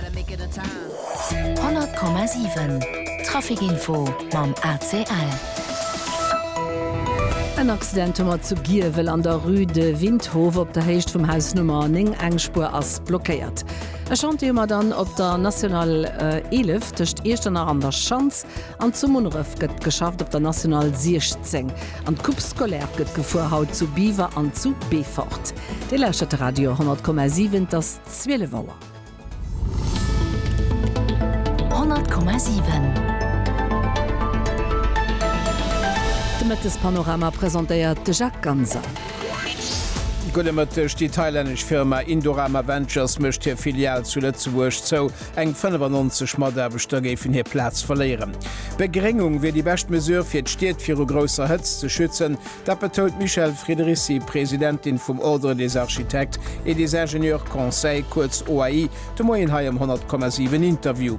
100,7 Trafic-Info mam ACL. En Accident hu mer zu Giewel an der Rue de Windhof op der Héicht vum Haus Nummer 9. Eng Spuer ass blockéiert. E Chantier hu mer dann op der National 11 tëscht Iechternach an der Schanz. An zu Munneref gëtt geschafft op der National 16. An d'Coupe scolaire gëtt gefuer, haut zu Biwer an zu Beefort. Dir lauschtert de Radio 100,7, et ass 12 Auer. De Mëttespanorama presentéiert de Jacques Ganser. Gudde Mëtteg, Déi thailännesch Firma Indorama Ventures mécht hir Filial zu Lëtzebuerg zou. Eng 95 Mataarbechter géifen hir Plaz verléieren. Begréngung wier déi bescht Mesure fir d'Stied viru grousser Hëtzt ze schützen. Dat betount d'Michèle Friederici, Presidentin vum Ordre des Architectes et des Ingénieurs Conseils, kuerz OAI, de Moien hei am 100,7 Interview.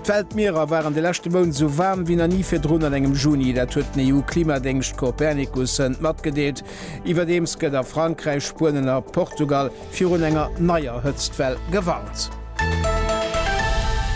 D'Weltmierer waren de leschte Mount esou waarm wéi nach ni virdrun an engem Juni. Dat huet den EU-Klimadéngscht Copernicus Sënnt matgedeelt. Iwwerdeems gëtt a Frankräich, Spuenen a Portugal virun enger neier Hëtztwell gewarnt.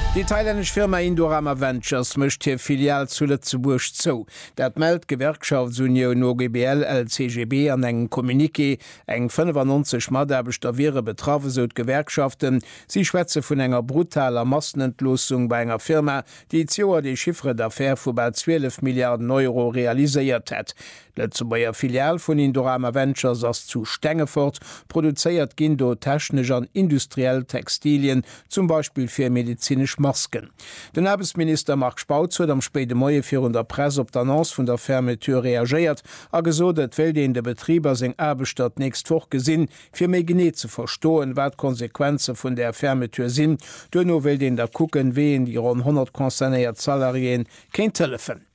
Déi thailännesch Firma Indorama Ventures mécht hir Filial zu Lëtzebuerg zou. Dat mellt d'Gewerkschaftsunioun OGBL-LCGB an engem Communiqué. Eng 95 Mataarbechter wiere betraff, esou d'Gewerkschaften. Si schwätze vun enger brutaler Massenentloossung bei enger Firma, déi d'Joer de Chiffre d'affaires vu bal 12 Milliarden Euro realiséiert hätt. D'Lëtzebuerger Filial vun Indorama Ventures ass zu Stengefort. Produzéiert ginn do technesch an industriell Textilien, zum Beispill fir medezinesch Masken. Den Aarbechtsminister Marc Spautz huet am spéide Moie virun der Press op d'Annonce vun der Fermeture reagéiert a gesot, et wéilt een de Betrib a seng Aarbechter d'nächst Woch gesinn, fir méi genee ze verstoen, wat d'Konsequenze vun där Fermeture sinn. Duerno wéilt een da kucken, wéi een déi ronn 100 concernéiert Salariéeë kéint hëllefen.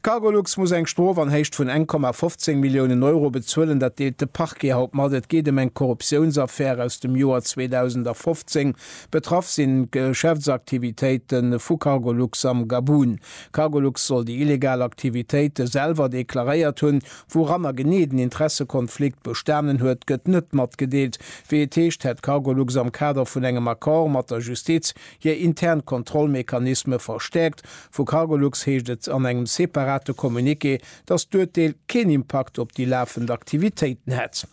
D'Cargolux muss eng Strof an Héicht vun eng Komma 15 Milliounen Euro bezuelen. Dat deelt de Parquet haut mat. Et geet ëm eng Korruptiounsaffär aus dem Joer 2015. Betraff sinn d'Geschäftsaktivitéite vu Cargolux am Gabun. Cargolux soll déi illegal Aktivitéite selwer deklaréiert hunn. Wouranner genee den Interessekonflikt bestanen huet, gëtt net matgedeelt. Wéi et heescht, hätt Cargolux am Kader vun engem Accord mat der Justiz hir intern Kontrollmechanisme verstäerkt Vu Cargolux heescht et an engem separate Communiqué, datt d'Urteel keen Impakt op déi lafend Aktivitéiten hätt.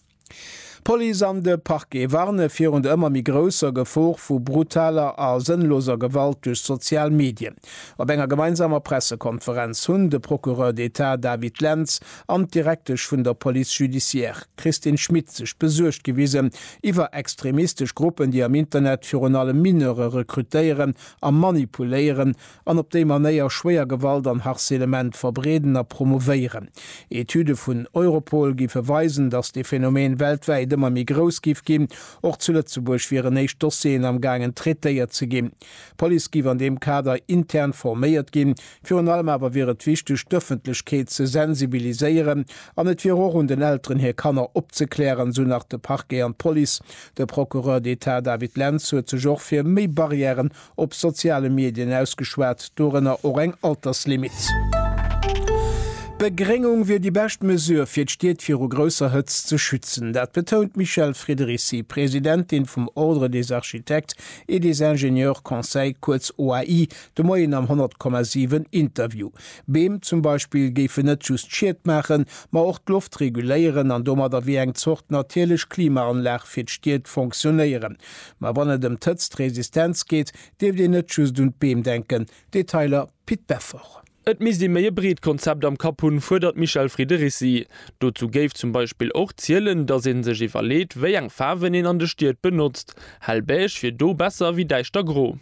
D'Police an de Parquet warne virun der ëmmer méi grousser Gefor vu brutaler a sënnloser Gewalt duerch sozial Medien. Op enger gemeinsamer Pressekonferenz hunn de Procureur d'Etat David Lentz an d'Direktesch vun der Police judiciaire Christine Schmit sech besuergt gewisen iwwer extremistesch Gruppen, déi am Internet virun allem Mineure rekrutéieren a manipuléieren an op déi Manéier schwéier Gewalt an Harcelement verbreeden a promouvéieren. Etüde vun Europol giffe weisen, datt dee Phänomen weltwäit ëmmer méi grouss giff ginn. Och zu Lëtzebuerg wieren éischt Dossieren am gaangen traitéiert ze ginn. D'Police giff an deem Kader intern forméiert ginn. Virun allem awer wier et wichteg, d'Ëffentlechkeet ze sensibiliséieren an et wier och un den Elteren hir Kanner opzeklären, esou nach de Parquet an d'Police. De Procureur d'Etat David Lentz huet sech och fir méi Barrièren op soziale Medien ausgeschwat, dorënner och eng Alterslimit. D'Begréngung wier déi bescht Mesure, fir d'Stied viru grousser Hëtzt ze schützen. Dat betount d'Michèle Friedericy, Presidentin vum Ordre des architectes et des ingénieurs conseils, kuerz OAI, de Moien am 100,7 Interview. Beem zum Beispill géifen net just Schied maachen, ma och d'Loft reguléieren an domadder wéi eng Zort natierlech Klimaanlag fir d'Stied fonctionnéieren. Ma wann et ëm d'Hëtztresistenz geet, dierft een net just un d'Beem denken. Detailer, Pit Beffort. Et misst ee méi e breet Konzept am Kapp hunn, fuerdert d'Michèle Friederici. Dozou géif zum Beispill och zielen, datt ee sech iwwerleet, wéi eng Faarwen een an de Stied benotzt. Hell Beige wier do besser wéi däischter Gro.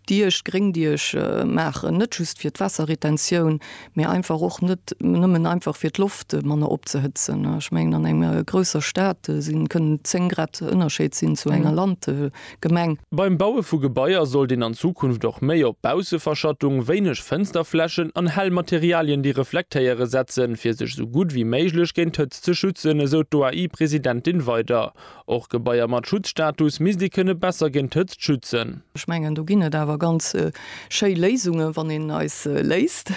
Diech, Gréngdiech, maachen, net just fir d'Waasserretentioun, mee einfach och net nëmmen einfach fir d'Loft manner opzehëtzen. Ech mengen an enger grousser Stad si kënnen 10 Grad Ënnerscheed sinn zu enger Landgemeng. Beim Baue vu Gebaier sollt een an Zukunft och méi op Bausseverschattung, wéineg Fënsterflächen an hell Materialien, déi reflektéiere setzen, fir sech esou gutt wéi méiglech géint d'Hëtzt ze schützen, esou d'OAI-Presidentin weider. Och Gebaier mat Schutzstatus misst ee kënne besser géint d'Hëtzt schützen. Ech mengen, do ginn et awer ganz schéi Léisungen, wann een eis léisst,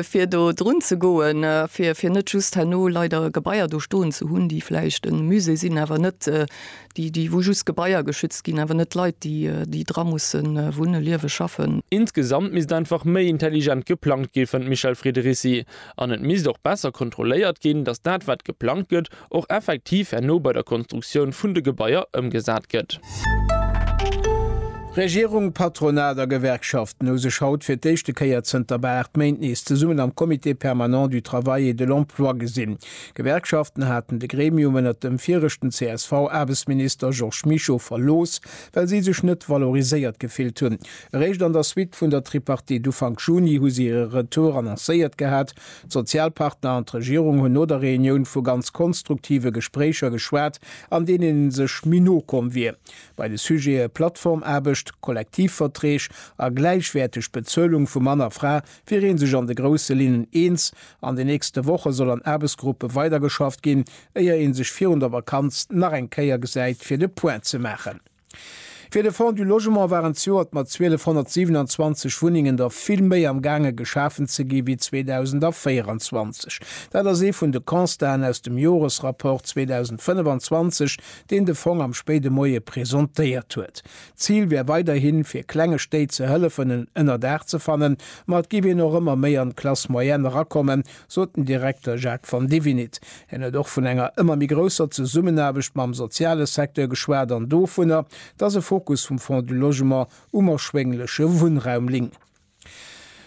fir do drun ze goen, fir net just herno leider Gebaier do stoen ze hunn, déi vläicht e Musée sinn, awer net déi, déi wou just Gebaier geschützt ginn, awer net d'Leit, déi, déi dra musse wunnen, liewen, schaffen. Insgesamt misst einfach méi intelligent geplangt ginn, fënnt d'Michèle Friederici. An et misst och besser kontrolléiert ginn, datt dat, wat geplangt gëtt, och effektiv herno bei der Konstruktioun vun de Gebaier ëmgesat gëtt. Regierung, Patronat a Gewerkschaften hu sech haut fir d'éischte Kéier zënter bal 8 Méint nees zesummen am Comité permanent du Travail et de l'Emploi gesinn. D'Gewerkschaften haten de Gremium ënnert dem viregten CSV-Aarbechtsminister Georges Mischo verlooss, well si sech net valoriséiert gefillt hunn. Eréischt an der Suite vun der Tripartite Ufank Juni hu si hire Retour annoncéiert gehat D'Sozialpartner an d'Regierung hunn no der Reunioun vu ganz konstruktive Gespréicher geschwat, an deenen ee sech méi no komm wier. Bei de Sujete Plattformaarbecht, Kollektivverträg a gläichwäerteg Bezuelung vu Mann a Fra wier ee sech an de grousse Linnen eens. An den nächste Woche soll an Aarbechtsgruppe weidergeschafft ginn, éier ee sech virun der Vakanz nach eng Kéier gesäit, fir de Point ze maachen. Fir de Fonds du Logement waren zejoert mat 1227 Wunnengen der vill méi am gaange geschafen ze gi wéi 2024. Dat ass ee vun de Constaten aus dem Joresrapport 2025, deen de Fong am spéide Moie presentéiert huet. D'Zil wär weiderhin, fir klenge Stéit ze hëllefen en Ënnerdaach ze fannen, ma et géif een och ëmmer méi an d'Classe moyenne erakommen, sot den Direkter Jacques Van Divinit. Hien huet och vun enger ëmmer méi grousser Zesummenaarbecht mam soziale Secteur geschwat an dovunner, dass e Fokus vum Fonds du Logement um erschwéngleche Wunnraum ling.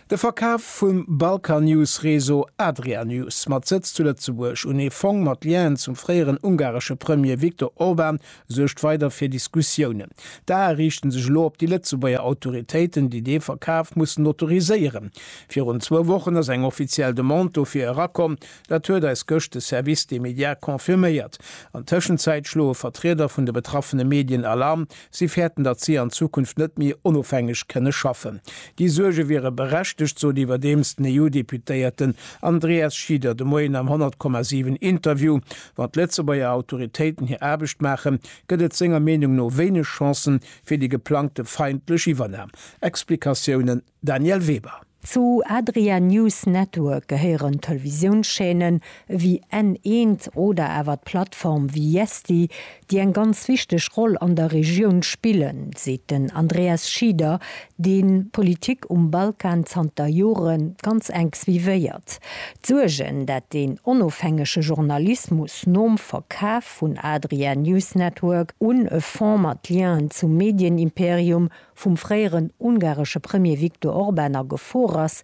De Verkaf vum Balkannews-Réseau Adrianews, mat Sëtz zu Lëtzebuerg, un ee Fong mat Lienen zum fréieren ungaresche Premier Viktor Orban, suergt weider fir Diskussiounen. D'Ae riichten sech elo op déi Lëtzebuerger Autoritéiten, déi dee Verkaf mussen autoriséieren. Virun zwou Wochen ass eng offiziell Demande dofir erakomm, dat huet eis gëscht de Service des médias confirméiert. An Tëschenzäit schloe Vertrieder vun de betraffene Medien Alarm. Si fäerten, datt si an Zukunft net méi onofhängeg kënne schaffen. Déi Suerge wiere berechtegt, sot iwwerdeems den EU-Deputéierten Andreas Schieder de Moien am 100,7 Interview. Wann d'Lëtzebuerger Autoritéiten hir Aarbecht maachen, gëtt et senger Meenung no wéineg Chancen fir déi geplangte feindlech Iwwernam. Explikatiounen, Danièle Weber. Zu Adria News Network gehéieren Televisiounschaînen ewéi N1 oder awer d'Plattform Viesti, déi eng ganz wichteg Roll an der Regioun spillen, seet den Andreas Schieder, dee d'Politik um Balkan zanter Jore ganz enk suivéiert. D'Suergen, dat deen onofhängege Journalismus nom Verkaf vun Adria News Network un e Fonds mat Lienen zum Medienimperium vum fréieren ungaresche Premier Viktor Orban a Gefor ass,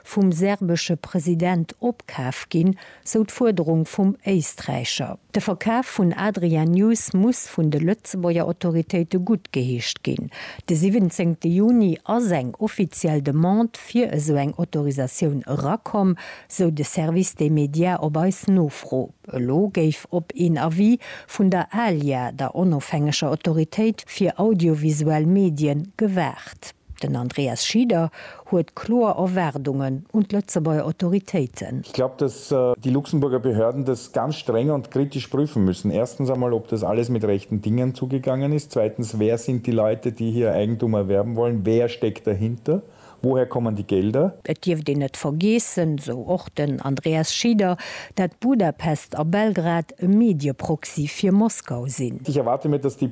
vum serbesche President opkaf ginn, sou d'Fuerderung vum Éisträicher. De Verkaf vun Adria News muss vun de Lëtzebuerger Autoritéite guttgeheescht ginn. De 17 Juni ass eng offiziell Demande fir esou eng Autorisatioun erakomm, sou de Service des médias op eis Nofro. Elo géif op een Avis vun der ALIA, der onofhängeger Autoritéit fir audiovisuell Medien, gewaart. Den Andreas Schieder huet kloer Erwaardungen un d'Lëtzebuerger Autoritéiten. Ich glaube, dass die Luxemburger Behörden das ganz streng und kritisch prüfen müssen. Erstens einmal, ob das alles mit rechten Dingen zugegangen ist. Zweitens, wer sind die Leute, die hier Eigentum erwerben wollen? Wer steckt dahinter? Woher kommen die Gelder? Et dierft een net vergeessen, esou och den Andreas Schieder, dat Budapest a Belgrad e Medieproxy fir Moskau sinn. Ich erwarte mir, dass die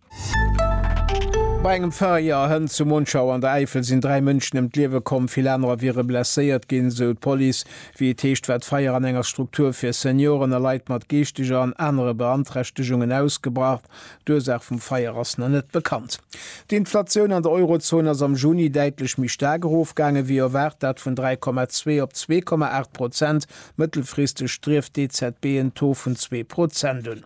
Bei engem Feier hënt zu Monschau an der Äifel sinn dräi Mënschen ëm d'Liewe komm, vill anerer wiere blesséiert ginn, sou d'Police. Wéi et heescht, war d'Feier an enger Struktur fir Senioren a Leit mat geeschteger an anere Beanträchtegungen ausgebrach. D'Ursaach vum Feier ass nach net bekannt. D'Inflatioun an der Eurozon ass am Juni däitlech méi staark erofgaange wéi erwaart, dat vun 3,2 op 2,8 Prozent. Mëttelfristeg strieft d'EZB en Taux vun zwee Prozent un.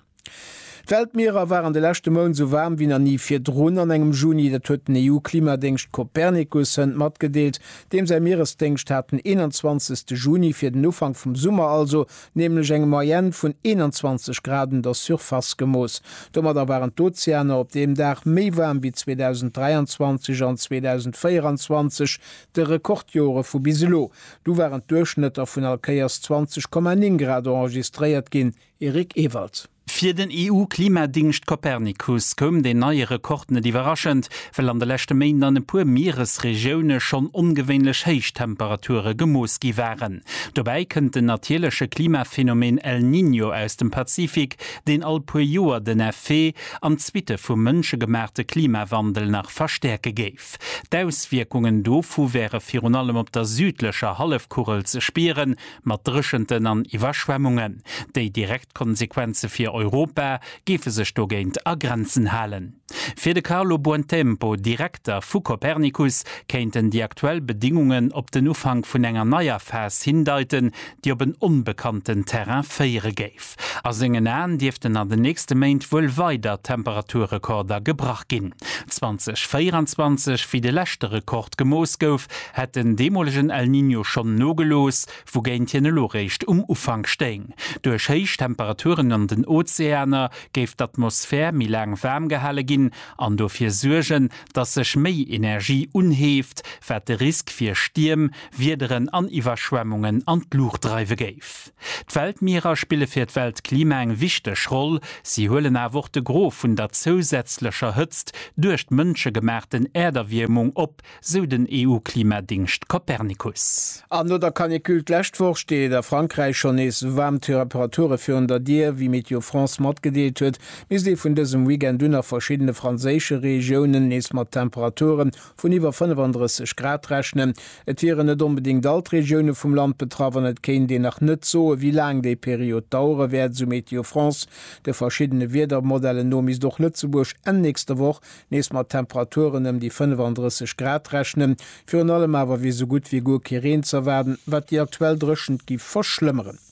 D'Weltmierer waren de leschte Mount sou waarm wéi nach ni virdrun an engem Juni. Dat huet den EU-Klimadéngscht Copernicus hënt matgedeelt. Deem säi Mieresdéngscht hat den 21. Juni, fir den Ufank vum Summer also, nämlech eng Moyenne vun 21 Grad un der Surface gemooss. Domadder waren d'Ozeaner op deem Dag méi waarm wéi 2023 an 2024, de Rekordjore vu bis elo. Du waren d'Duerchschnëtter vun allkéiers 20,9 Grad enregistréiert ginn. Eric Ewald. Fir den EU-Klimadingscht Copernicus koum deen neie Rekord net iwwerraschend, well an de leschte Méint an e puer Mieresregioune schonn ongewéinlech héich Temperature gemooss gi waren. Dobäi kënnt den natierleche Klimaphänomen El Niño aus dem Pazifik, deen all puer Joer den Effet an d'Suitte vum mënschegemaachte Klimawandel nach verstäerke géif. D'Auswierkungen dovu wäre virun allem op der südlecher Hallefkugel ze spieren, Mat Dréchenten an Iwwerschwemmungen. Déi direkt Konsequenze fir Europa géife sech dogéint a Grenzen halen. Fir de Carlo Buontempo, Direkter vu Copernicus, kéinten déi aktuell Bedingungen op den Ufank vun enger neier Phas hindeiten, déi op en onbekannten Terrain féiere géif. A sengen Aen dierften an den nächste Méint wuel weider Temperaturrekorder gebrach ginn. 2024, wéi de leschte Rekord gemooss gouf, hätt den deemolegen El Niño schonn nogelooss, wougéint hien elo réischt um Ufank stéing. Duerch héich Temperaturen an den Ozeaner géif d'Atmosphär méi laang waarm gehale ginn an dofir suergen, datt sech méi Energie unheeft, wat de Risk fir Stierm, Wiederen an Iwwerschwemmungen an d'Luucht dreiwe géif. D'Weltmierer spille fir d'Weltklima eng wichteg Roll, si huelen awer och de Gros vun der zousätzlecher Hëtzt duerch d'mënschegemaachten Äerderwiermung op, sou den EU-Klimadingscht Copernicus. An no der Canicule d'lescht Woch steet a Frankräich schonn nees waarm Teraperaturen virun der Dier. Wéi Météo France matgedeelt huet, misst ee vun dësem Weekend un a verschiddene franséische Regiounen nees mat Temperaturen vun iwwer 35 Grad rechnen. Et wieren net onbedéngt all d'Regioune vum Land betraff an et kéint een nach net soen, wéi laang déi Period dauere wäert, esou Météo France. De verschiddene Wiedermodellen no misst och Lëtzebuerg Enn nächster Woch nees mat Temperaturen ëm déi 35 Grad rechnen. Virun allem awer wier esou gutt wéi guer kee Reen z'erwaarden, wat déi aktuell Dréchent géif verschlëmmeren.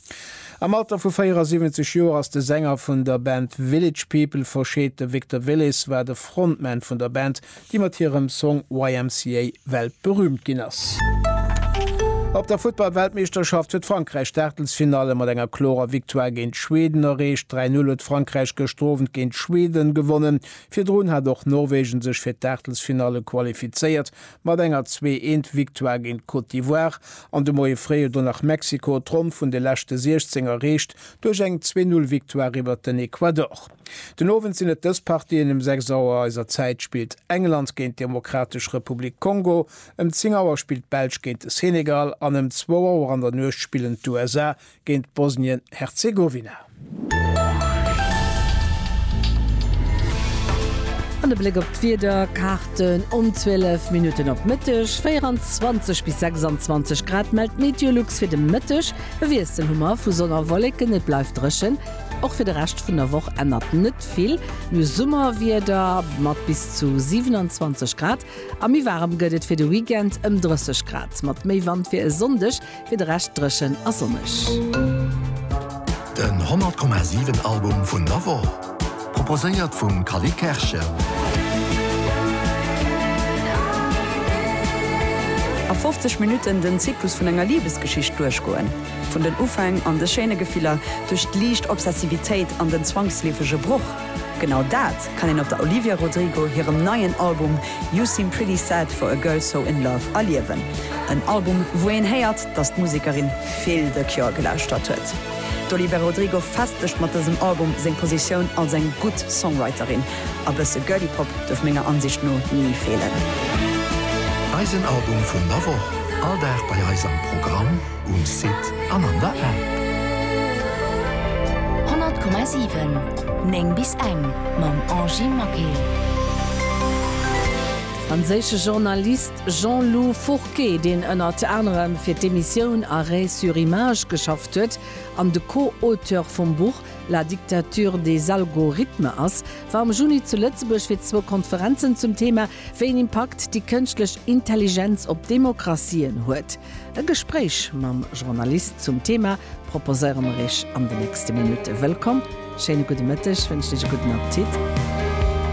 Am Alter vu 74 Joer ass de Sänger vun der Band Village People verscheet. De Victor Willis war de Frontman vun der Band, déi mat hirem Song YMCA weltberüümt ginn ass. Op der Futtball-Weltmeeschterschaft huet Frankräich d'Aachtelsfinalle mat enger klorer Victoire géint Schweden erreecht. 3-0 huet Frankräich gëschter Owend géint Schweden gewonnen. Virdrun hat och Norwegen sech fir d'Aachtelsfinalle qualifizéiert, Mat enger 2 eent Victoire géint d'Côte d'Ivoire an de Moie fréi huet do nach Mexiko d'Ronn vun de leschte 16 erreecht duerch eng 2 Null Victoire iwwert den Ecuador. Den Owend sinn et dës Partien, Ëm 6 Auer eiser Zäit spillt England géint d'Demokratesch Republik Kongo, ëm 10 Auer spillt d'Belsch géint de Senegal an ëm zwou Auer an der Nuecht spillen d'USA géint Bosnien-Herzegowina. An e Bléck op d'Wiederkaarten, Um 12 Minutten op Mëtteg 24 bis 26 Grad mellt d'Meteolux fir de Mëtteg. E Wiessel hu mer vu Sonn a Wolleken, et bleift dréchen. Och fir de Rescht vun der Woch ännert net vill, nu Summerwieder mat bis zu 27 Grad. A méi waarem gëtt et fir de Weekend, ëm 30 Grad mat méi Wand fir e Sonndeg. Fir de Rescht dréchen a sonneg. Den 100,7 Album vun der Woch, proposéiert vum Cally Kerschen. A 50 Minutten den Zyklus vun enger Libesgeschicht duerchgoen. Vun den Ufäng an de schéine Gefiller, duerch d'liicht Obsessivitéit an den zwangsleefege Broch. Genau dat kann een op der Olivia Rodrigo hirem neien Album You Seem Pretty Sad for a Girl So In Love erliewen. En Album, wou een héiert, dass d'Musekerin vill The Cure gelauschtert huet. D'Olivera Rodrigo festegt mat dësem Album seng Positioun als eng gutt Songwriterin. A bësse Girly Pop duerf menger Ansicht no ni feelen. Eisen Album vun der Woch, all Dag bei eis am Programm. Um Site an an der App. 100,7 9 bis eng mam Angy Maquet. Franséische Journalist Jean-Lou Fourquet, deen ënnert anerem fir d'Emissioun Arrêt sur image geschafft huet an de Co-Auteur vum Buch La dictature des algorithmes ass, war am Juni zu Lëtzebuerg fir zwou Konferenzen zum Thema, wéi een Impakt déi kënschtlech Intelligenz op Demokratien huet. E Gespréich mam Journalist zum Thema proposéiere mer iech an de nächste Minutte. Wëllkomm, schéine gudde Mëtteg, wënschen iech e gudden Appetit.